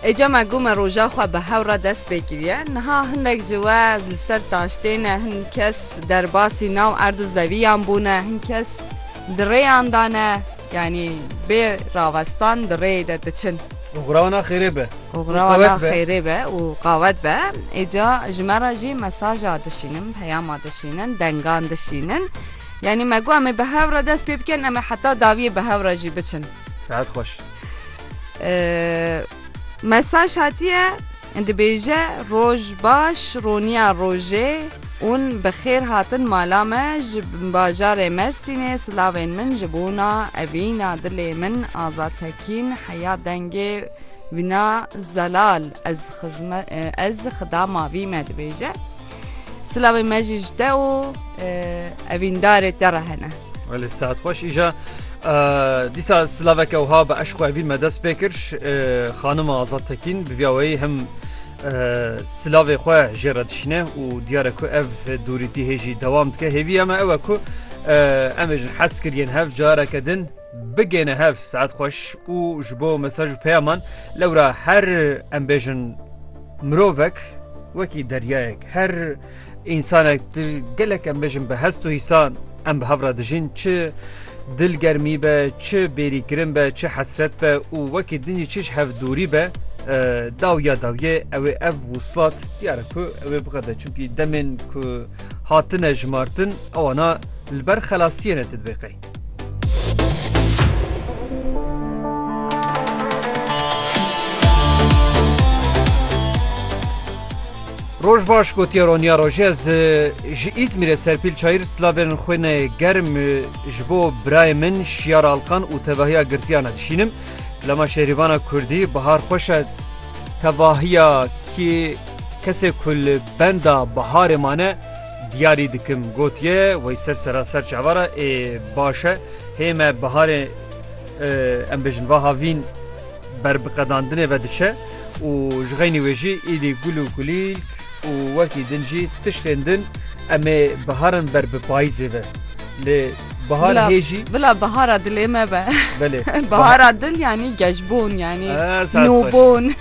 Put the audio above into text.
Êca me got me roja xwe bi hew re dest pê kiriye. Niha hindek ji we li ser taştê ne, hin kes derbasî nav erd û zeviyan bûne, hin kes di rêyan de ne, yanî bê ravestan di rêyê de diçin. Û xwe wana xêrê be. Û xwe wana xêrê be û qawet be. Êca ji me re jî mesaja dişînin, peyama dişînin, dengan dişînin. Yanî me got em ê bi hev re dest pê bikin, em ê heta dawiyê bi hev re jî biçin. Sehet xweş. Mesaj hatiye dibêje roj baş roniya rojê ûn bi xêr hatin mala me ji bajarê Mersînê silavên min ji bona evîna dilê min Azad Tekîn heya dengê wina zelal ez xizme ez xida mavî me dibêje. Silavê me jî ji te û evîndarê te re hene. Welê saet xweş îja dîsa silaveke wiha bi eşq û evîn me dest pê kir xanima Azad Tekîn bi vîya weyî him silavê xwe jê re dişîne û diyare ku ev dûrîtî hêjî dewam dike hêviya me ew e ku em ê jin hez kiriyên hev careke din Bigêne hev saet xweş û ji bo mesaj û peyaman lewra her em bêjin mirovek wekî deryayek her însanek di gelek em bêjin bi hest û hîsan em bi hev re dijîn çi dil germî be çi bêrî kirin be çi hesret be û wekî din jî çi ji hev dûrî be daw ya dawyê ew ê ev wuslat diyar e ku ew ê biqede çimkî demên ku hatine jimartin ewana li ber xelasiyê ne ti dibê qey. Roj baş gotiya Ronya Rojê ez ji İzmirê serpîl çayir slavên xwe ne germ ji bo birayê min şiyar alqan û tevahiya girtiyana dişînim. Lema şerîvana Kurdî bihar xweş e tevahiya kî kesê ku li benda biharê mane Diyarî dikim gotiye wey ser seraser çava re ê baş e hê me biharê em bêjin vaha vîn berbiqedandinê ve diçe û ji xeynî wê jî îdî gul û kulîlk û wekî din jî tiştên din em ê biharin ber bi payîzê ve lê bihar Bila- hê jî Bila bihara dilê me be. belê Bihara dil yanî gejbûn yanî Ah, saet xweş. nûbûn.